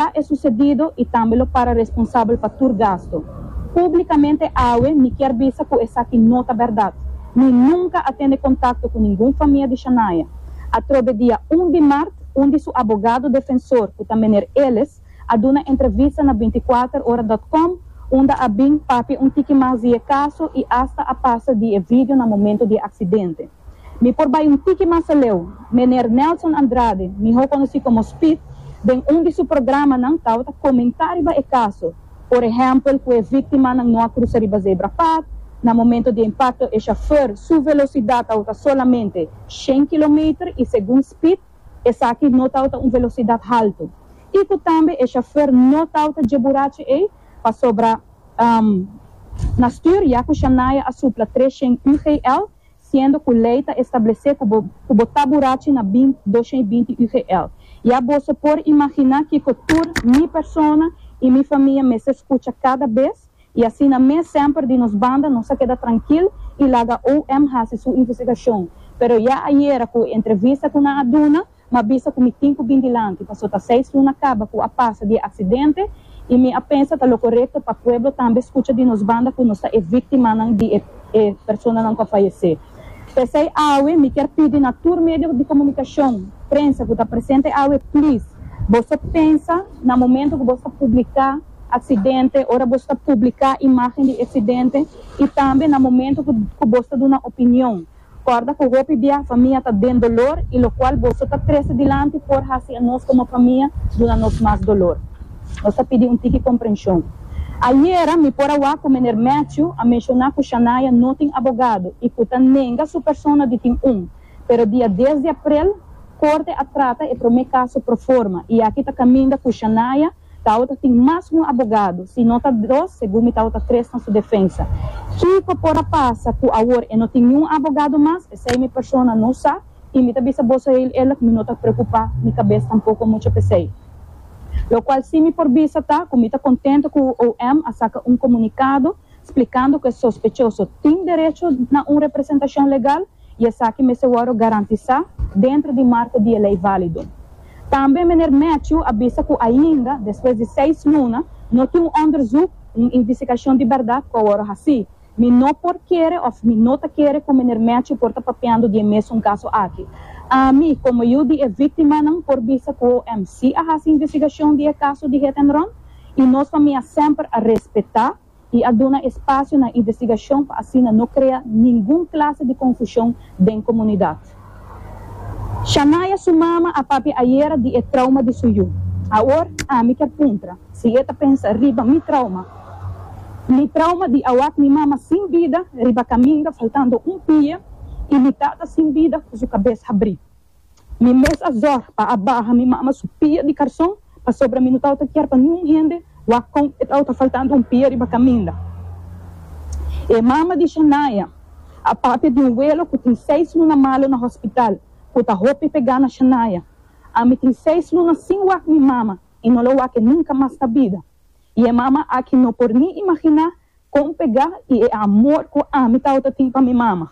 Ta e sucedido y tambe lo para responsabel pa tur gasto. Publicamente awe mi kier bisa cu esaki no ta berdad. Mi nunca a tene contacto cu ningun famia di Shania. Atrobe dia un di mart un di su abogado defensor cu ta Meneer Ellis a duna entrevista na binticuaterora.com unda a bin papia un tiki mas di e caso y hasta a pasa di e video na momento di e accidente. Mi por bai un tiki mas aleu. Meneer Nelson Andrade, miho konosí komo Speed, den un di su programanan tabata komentá riba e kaso, por ehèmpel ku e víktimanan no a krusa riba zebrapad, na momento di e impakto e shofèr su velosidat tabata solamente shen kilometer i segun Speed esaki no tabata un velosidat haltu i ku tambe e shofèr no tabata dje burachi ei pasobra na stuur ya ku Shania a supla tres shen UGL siendo cu ley ta establece cu bo cu bo ta burachi na bint dos shen y binti UGL. Ya boso por imagina kico tur mi persona y mi famia mester scucha cada bes y asina mes semper di nos banda nos a keda trankil y laga OM hasi su investigacion. Pero ya ayera cu entrevista cu nan a duna, M'a bisa ku mi tin ku bin dilanti, paso ta seis luna kaba ku a pasa di e aksidente i mi a pensa ta lo korekto pa pueblo tambe skucha di nos banda ku nos ta e víktimanan di e e personanan ku a fayesé. P'esei awe mi kier pidi na tur medio di komunikashon, prensa ku ta presente awe, plis, boso pensa na momento ku boso ta publiká aksidente, ora boso ta publiká imágen di e aksidente i tambe na momento ku ku boso ta duna opinion. Kòrda ku hopi bia famia ta den dolor i lokual boso ta trese dilanti por hasi e nos komo famia duna nos mas dolor. Nos ta pidi un tiki komprenshon. Ayera mi por a wak ku Meneer Matthew a menshoná ku Shania no tin abogado i ku ta nenga su persona di tin un. Pero dia dies di aprel, Korte a trata e promé kaso proforma i aki ta kaminda ku Shania Tabata tin mas un abogado, si no ta dos, segun mi tabata tres na su defensa. Kiko por a pasa ku awor e no tin niun abogado mas? P'esei mi persona no sa i mi ta bisa boso heel eerlijk mi no ta preokupá mi kabes tampoko mucho p'esei. Lokual si mi por bisa ta ku mi ta kontento ku OM a saka un komunikado splikando ku e sospechoso tin derecho na un representashon legal. i esaki mester wòrdu garantisá dentro di marko di e lei válido. Tambe Meneer Matthew a bisa ku ainda despues di seis luna no tin un òndersuk, un invisikashon di bèrdat ku a wòrdu hasí. Mi no por kere òf mi no ta kere ku Meneer Matthew por ta papiando di e mesun kaso aki. Ami, komo yu di e víktimanan, por bisa ku OMC a hasi invisigashon di e kaso di hit-and-run i nos famia semper a respetá, i a duna espasio na investigashon pa asina no krea ningun klase di konfushon den komunidat. Shania su mama a papia ayera di e trauma di su yu. Awor ami kier puntra si e ta pensa riba mi trauma, mi trauma di a wak mi mama sin bida riba kaminda faltando un pie i mi tata sin bida ku su kabes habrí. Mi mes a zorg pa a baha mi mama su pia di karson, pasobra mi no tabata kier pa niun hende wak kon e tabata faltando un pia riba kaminda. E mama di Shania a papia di un welo ku tin seis luna malo na hospital, ku ta hopi pega na Shania. Ami tin seis luna sin wak mi mama i no lo wak e nunka mas na bida. I e mama aki no por ni imaginá Kon pegá i e amor ku ami tawata tin pa mi mama.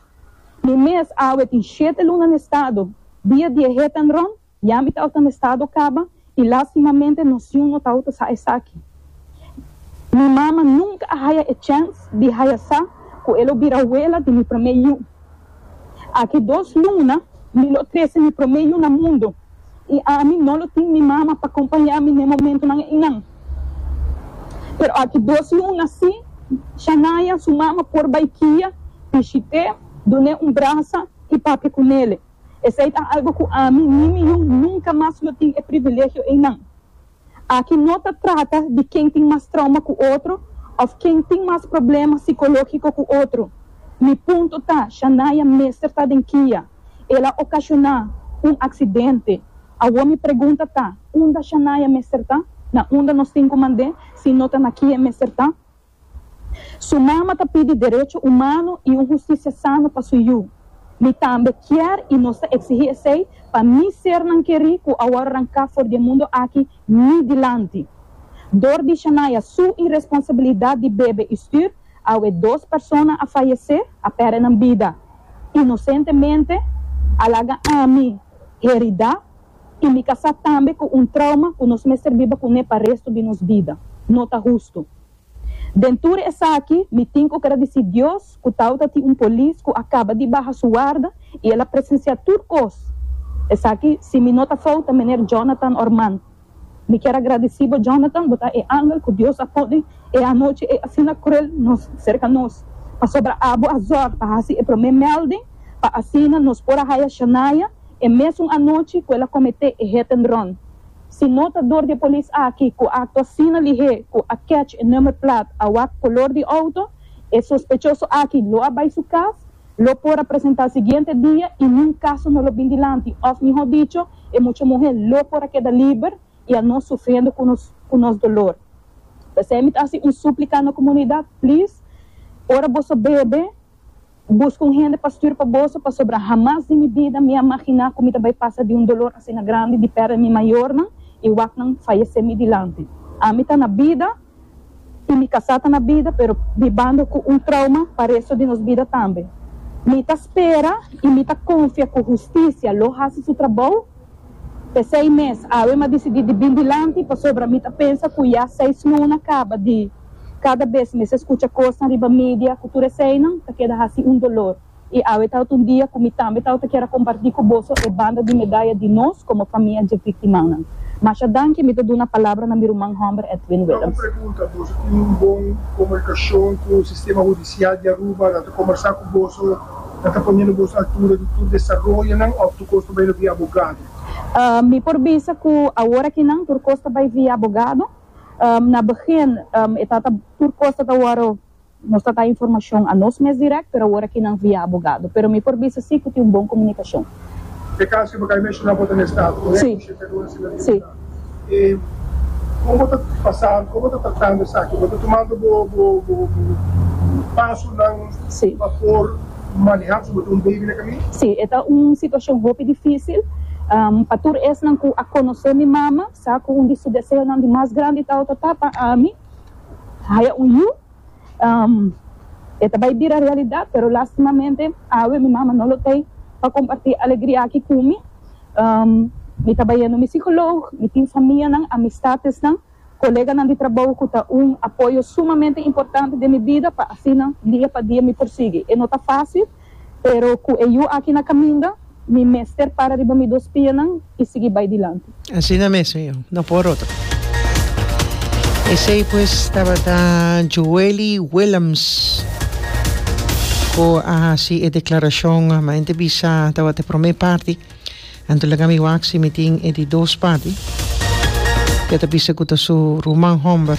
Mi mes awe tin shete luna na estado, dia di e hit and run, ya mi tawata na estado kaba i lastimamente nos yu no tawata sa esaki. Mi mama nunka a haya e chèns di haya sa ku e lo bira wela di mi promé yu. Aki dos luna mi lo trese mi promé yu na mundu. I ami no lo tin mi mama pa kompañá mi n'e momentunan einan. Pero aki dos luna sí, Shania, su mama, por bai kia, pishit'é, dun'é un brasa i papia ku nele. Esei ta algu ku ami ni mi yu nunka mas lo tin e privilegio einan. Aki no ta trata di ken tin mas trauma ku otro òf ken tin mas problema sikológiko ku otro. Mi punto ta, Shanaya mester ta den kia. El a okashoná un aksidente. Awor mi pregunta ta, unda Shanaya mester ta? Na unda nos tin ku mand'é si no ta na kia e mester ta? Su mama ta pidi derecho humano y un justicia sano pa su yu. Mi tambe kier y nos ta exigi esey pa mi sernan keri cu awor ranca for di e mundo aki ni dilanti. Door di Shania su irresponsabilidad di bebe y stuur, awe dos persona a fayece, a perde nan bida. Inocentemente, a laga ami herida. I mi kasá tambe ku un trauma ku nos mester biba kuné pa restu di nos bida. No ta hustu. Den tur esaki, mi tin ku gradisí Dios ku tawata tin un polis ku a kaba di baha su warda i el a presensiá tur kos. Esaki, si mi no ta fout, ta Meneer Jonathan Ormand. Mi kier a gradisí bo, Jonathan, bo ta e angel ku Dios a pone e anochi ei asina kruel nos serka nos, pasobra abo a zòrg pa hasi e promé mèlding pa asina nos por a haya Shania, E mesun anochi ku el a kometé e hit and run. Si no ta dor di e polis aki ku a aktua asina lihé ku a kèch e number plat a wak kolor di outo, e sospechoso aki lo a bai su kas, lo por a presentá siguiente dia i niun kaso no lo bin dilanti òf mihó dicho e mucha muhé lo por a keda liber i a no sufriendo ku nos ku nos dolor. P'esei mi ta hasi un súplika na komunidat, please, ora boso bebe, Bo busca un hende pa stuur pa boso, pasobra hamas di mi bida mi a maginá cu mi ta bay pasa di un dolor asina grandi di perde mi mayornan y wacnan fayecé mi dilanti. Ami ta na bida y mi casá ta na bida, pero bibando cu un trauma pa resto di nos bida tambe. Mi ta spera y mi ta confia cu husticia lo haci su trabou. P'esey mes, awe mi a dicidi di bin dilanti, pasobra mi ta pensa cu ya seis luna caba di. Kada bes mester skucha kosnan riba media ku tur eseinan ta keda hasi un dolor. I awe tabata un dia ku mi tambe tabata kier a kompartí ku boso e banda di medaya di nos komo famia dje viktimanan. Masha danki mi ta duna palabra na mi ruman hòmber Edwin Willems. Boso tin un bon komunikashon ku sistema hudisial di Aruba. Nan ta kombersá ku boso, nan ta ponendo boso altura di tur desaroyonan òf tur kos ta bai lo via abogado. Mi por bisa ku awor akinan tur kos ta bai via abogado. Na begin e tata tur cos tata worde nos ta ta informacion a nos mes direct pero awor aki nan via abogado pero mi por bisa si cu tin un bon comunicacion. E caso cu bo acaba di menciona bo ta na estado correcto? Si. Sheffield Luna si nan tribunal. Si. E como bo ta pasando, como bo ta tratando esaki? Bo ta tumando bo bo bo pasonan Si. pa por maneha pasobra bo ta un baby na camin? Si. E ta un situacion hopi dificil pa tur esnan cu a conoce mi mama. Sa cu un di su deseonan di mas grandi tawata ta pa Amy haya un yu. E ta bay bira realidad, pero lastimamente awe mi mama no lo tey pa comparti alegria aki cu mi. Mi ta bay yendo mi psicoloog, mi tin famianan, amistadesnan, coleganan di trabou cu ta un apoyo sumamente importante den mi bida pa asina dia pa dia mi por sigui. E no ta facil. Pero cu e yu aki na caminda, mi mester para riba mi dos pianan y sigui bay dilanti. Asina mesmo yo, no por otro. Esey pues tabata Joely Willems cu a haci e declaracion. Maente bisa tabata e prome parti, anto laga mi wak si mi tin e di dos parti. E ta bisa cu ta su ruman homber.